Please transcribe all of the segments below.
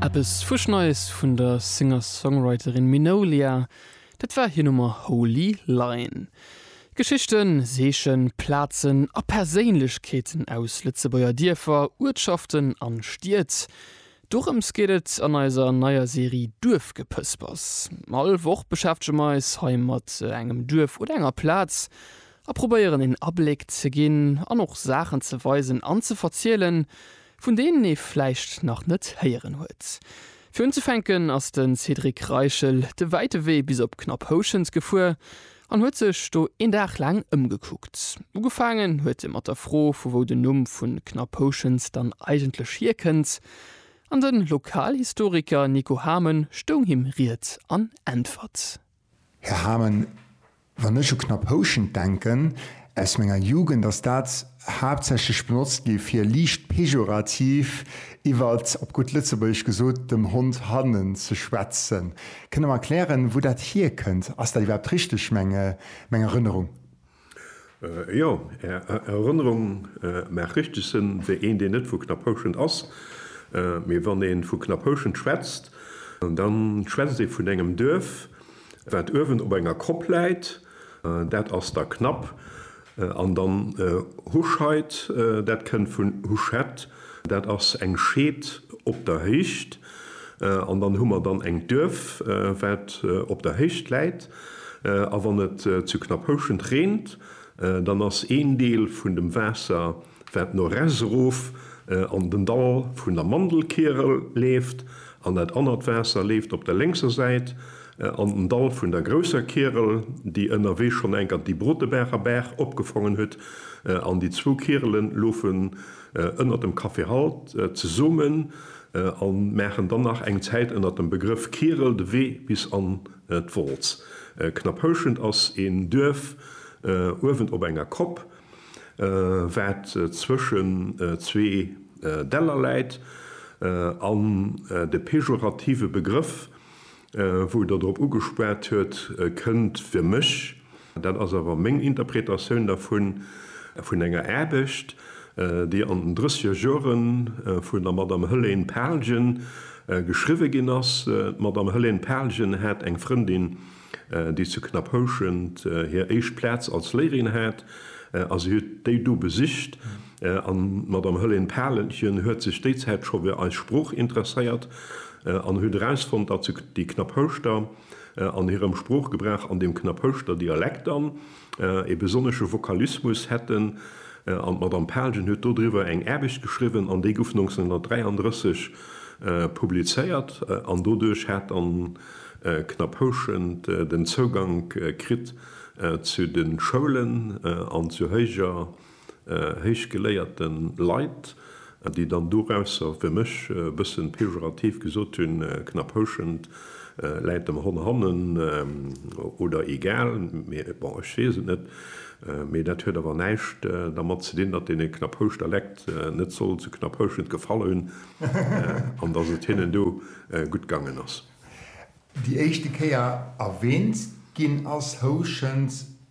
Eppes fuschneies vun der Singer-Songwriterin Minolia, dat war hir Nummer Holy Line. Geschichten, Seechen, Plazen a Perséinlechkeeten aus Lëtzebuerger Dierfer, Uertschaften an Stied, dorëms geet et an eiser neier Serie Duerfgepëspers. All Woch beschäftege mer eis hei mat engem Duerf oder enger Plaz a probéieren een Abléck ze ginn an och Saachen ze weisen an ze verzielen, vun deenen ee vläicht nach net héieren huet. Fir unzefänken ass de Cédric Reichel de wäite Wee bis op Knapphouschent gefuer an huet sech do een Dag laang ëmgekuckt. Ugefaangen huet e mat der Fro, vu wou den Numm vu Knapphouschent dann eigentlech hierkënnt, an de Lokalhistoriker Nico Hamen stoung him Ried an Äntwert. Här Hamen, wann ech u Knapp Houschent denken, aus menger Jugend ass dat haaptsächlech benotzt gi fir liicht pejorativ iwwer, op gutt Lëtzebuergesch gesot, dem Hond hannen ze schwätzen. Kënnt Der mer erklären, wou dat hierkënnt? Ass dat iwwerhaapt richteg, meng Erënnerung? Jo, Är Erënnerung maacht richteg Sënn, wéi een, deen net vu Knapphouschent ass. Mee wann ee vu Knapphouschent schwätzt, da schwätzt ee vun engem Duerf, wat uewen op enger Kopp läit, dat ass da Knapp. An dann Huscheid, dat kënnt vun Huschett, dat ass eng Scheed op der Héicht. An dann hu mer dann eng Duerf, wat op der Héicht läit. A wann et zu Knapphouschent reent, dann ass een Deel vun dem Waasser, wat no res erof an den Dall vun der Mandelkierel leeft, an dat anert Waasser leeft op der lénkser Säit an den Dall vun der grousser Kierel, déi ënnerwee schonn eng Kant déi Brotebaacher Baach opgefongen huet. An déi zwou Kierele lofen ënnert dem Café Halt zesomen. a maachen dann nach eng Zäit ënner dem Begrëff Kierel de Wee bis an d'Wolz. Knapphouschent ass een Duerf uewen op enger Kopp, wat zwëschen zwee Däller läit, an de pejorative Begrëff Wou Der drop ugespat huet, kënnt fir mech, dat ass awer meng Interpretatioun dervun, vun enger Aarbecht, déi an den drëssiger Jore vun der Madame Helene Pahlgen geschriwwe ginn ass. D'Madame Helene Pahlgen hat eng Frëndin, déi zu Knapphouschent hir éischt Plaz als Léierin hat, a si huet déi do besicht. An d'Madame Hëllén Palenchen huet sech déi Zäit scho fir eis Sprooch interesséiert an huet erausfonnt, datt se déi Knapphouschter an hirem Sproochgebrauch an dem Knapphouschter Dialekt dann ee besonnesche Vokalismus hätten. An d'Madame Palenchen huet dodriwwer eng Aarbecht geschriwwen an déi gouf 1933 publizéiert an doduerch hat dann Knapphouschent den Zougank kritt zu de Schoulen an zu héijer héichgeléierte Leit, déi dann dorausser, fir mech e bëssen pejorativ gesot, hunn, knapp houschend, läit dem Hon hannen oder egal, mee bon, ech weess et net. Mee dat huet awer näischt dermat ze dinn, datt dee Knapphouschter leckt net soll zu Knapphouschend gefall hunn an datt et hinnen do gutt gaangen ass. Déi éischte Kéier erwähnt ginn ass, houschend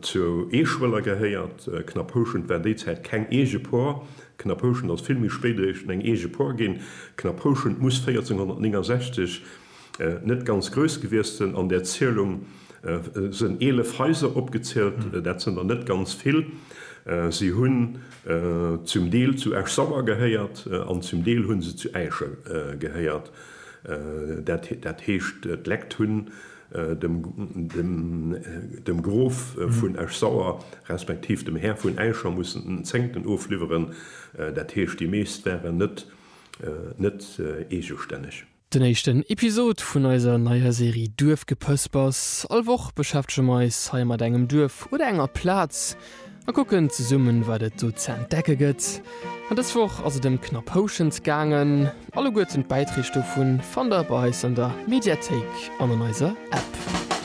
Zu Eeschwëller gehéiert Knapphouschent war déi Zäit keng eege Por. Knapphouschent ass vill méi spéit eréischt eng eege Por ginn. Knapphouschent muss 1469 net ganz grouss gewiesst sënn. An där Zielung sënn 11 Haiser opgezielt. Dat sënn der net ganz vill. Si hunn zum Deel zu Esch-Sauer gehéiert an zum Deel hunn se zu Äischen gehéiert. Dat heescht d'Lekt hunn dem Grof vun Esch-Sauer, respektiv dem Här vun Äischer mussen den Zéngten ofliwweren, dat heescht déi meescht waren net net eegestänneg. Den éischten Episod vun eiser neier Serie Duerfgepëspers. All Woch beschäftege mer eis hei mat engem Duerf oder enger Plaz. a kucken zesummen wat et sou ze entdecke gëtt. An dës Woch ass et ëm Knapphoschent gaangen. Alleguerten d'Bäitreeg dovun fannt der bei eis an der Mediathéik an an eiser App.